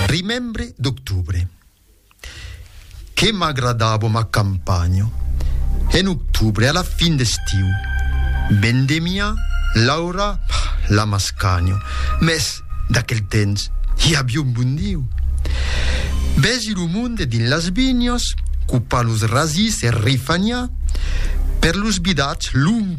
Rimembre d'octubre. Que m'agradavo ma campanho en octubre a la fin d'estiu. Vendemia l'aura la m'ascanho, mès d'aquel temps i aviá un bon Diu. Vesi lo monde dins las vinhas, copar los rasís e rifaniar per los vidats longui.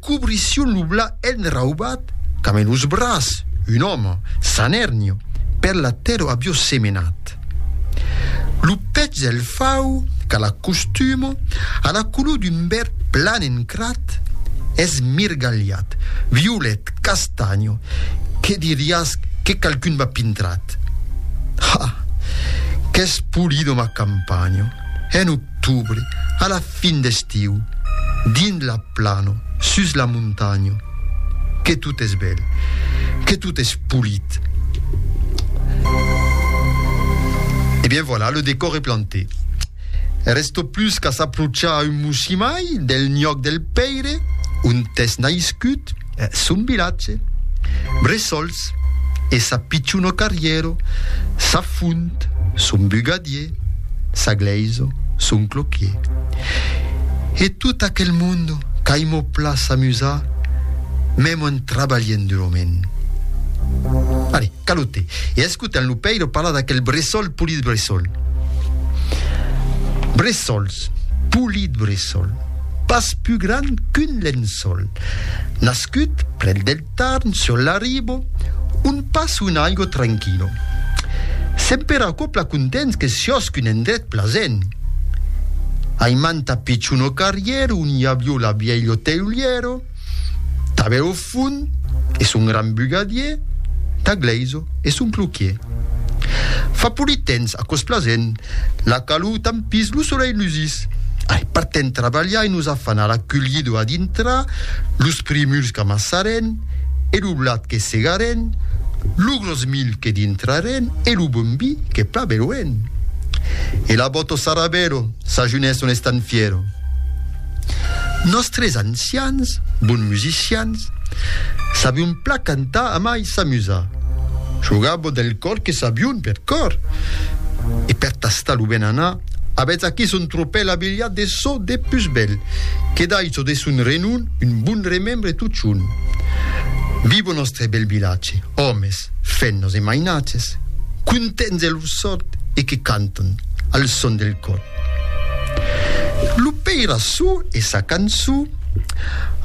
Cobrissión lo bla enraubat qu'am en los bras, un òme, San Ernio, per la tèrra avió semenat. Lo pech del fau, qu'a la costuma, a la color d'un verd plan encrat, es mirgalhat, violet, castanho, que diriás que qualqu'un m'a pintrat. Ha! Qu'es polido ma campanha! Hèn o octubre, a la fin d'estiu, dins la plano, sus la montanha, que tot es bèl, que tot es polit. E eh bien voilà, le décor est planté. Resto plus qu'a s'aprochar a un moshimai del nhòc del pèire ont es naiscut, Son vilatge, Bressols, e sa pichona carrièro, sa font, son bugadier, sa glèisa, son cloquier. E tot aquel monde qu'aimò pla s'amusar, mèmo en trabalhent durament. Allez, calote, e escotem lo pèiro parlar d'aquel bressol polit bressol. Bressols, polit bressol. Pas pus gran qu'un lençòl. Nascut près del Tarn, sur l'Aribo, on pas un aigo tranquilo. Semper acopla contents que siòsc un endret plasent. Ai manta pichon o carrièr on i avió la vièlho teulièro, Tanben au fond es un grand bugadier, tà Gleiso es un cloquier. Fa polit temps aquò's plasent, la calor tampís, lo solelh lusís. Ai, partem trabalhar e nos afanar la culhido a dintra, los primuls qu'amassarem e lo blat que segarem, lo gròs milh que dintrarem e lo bon vi que pla beloem. E la bòto Sarabèlo s'ajunés son estanfièro. Nòstres ancians, bons musicians, sabion plan cantar amai s'amusar. Jogabo del còr que sabion per còr. E per tastar lo ben anar, avètz aquí son tropèl abilhat de çò de pus bèl, que daissò de son renon un bon remembre totjorn. Vivo nòstre bèl vilatge, òmes, fennos e mainatges, contents de lor sòrt e que cantan, al son del còr. Lo peirassó e sa cançó.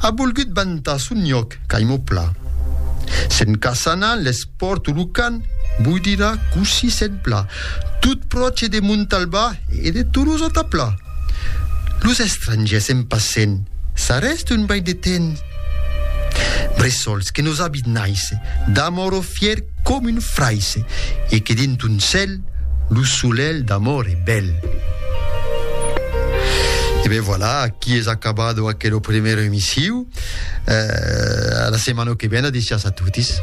A volgut vantar son lloc caimo pla. Se'n caçana l'espòrt o lo can, vos dirà cossí se'n pla, tot pròche de Montalbà e de Tolosa-ta-Pla. Los estrangèrs en passent, s'arrèsta un baic de temps. Bressols que nos abit naisse d'amor o fier com un fraisse e que dins ton cèl lo solelh d'amor e bèl. E ben voilà, aquí es acabado aquelo premèro emissiu. Eh, a la setmana que ven, adécias a totis.